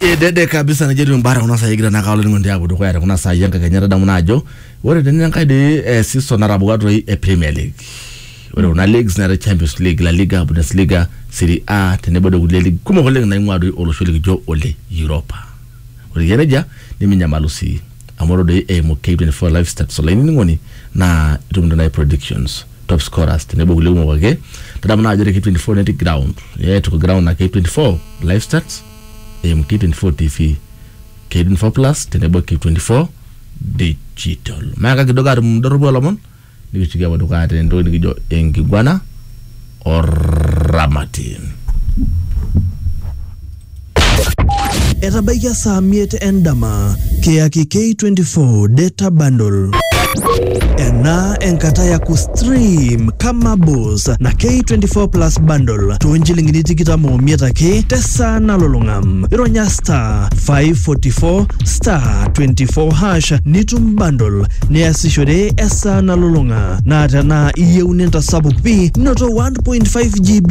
Edede kabisa najo etiu mbara kuna sai egira naa kaalo ningo ntiapo dukuya te kuna sai enkakenya tadamu naa ajo ore tene enkae dei eh, season natabuka toi e Premier League. Ore kuna leagues neetae Champions League, La Liga, Bundesliga, Serie A tenebo doi kulie league kumok oleng naing'ua doi olosho likijo ole Europa. Ore eyia nejia niminyamalu sii amu ore doi eimu K24 live stats olainining'oni naa itum doi naaji predictions. top scorers tenebo kulie kumok ake tadamu naa ajo te K24 netii ground yeah, tuko ground na K24 live stats eimu K24 TV K24 plus tenebo K24 digital meaka kidogo atum doropu olomon nikitoki apuo dukuya tentoki nikijo enkiguana oramatin Etabaikia saa miet endama, kiyaki K24 data bundle. Ena enkata ya kustream kama boss na K24 plus bundle too nchilingini tikitam omiet ake tesaa nalulung'a. Ironya star 544 star 24 hash nitum bundle niasishore esaa nalulung'a. Naa tenaa iyieu nintasapuk pi noto 1.5 GB.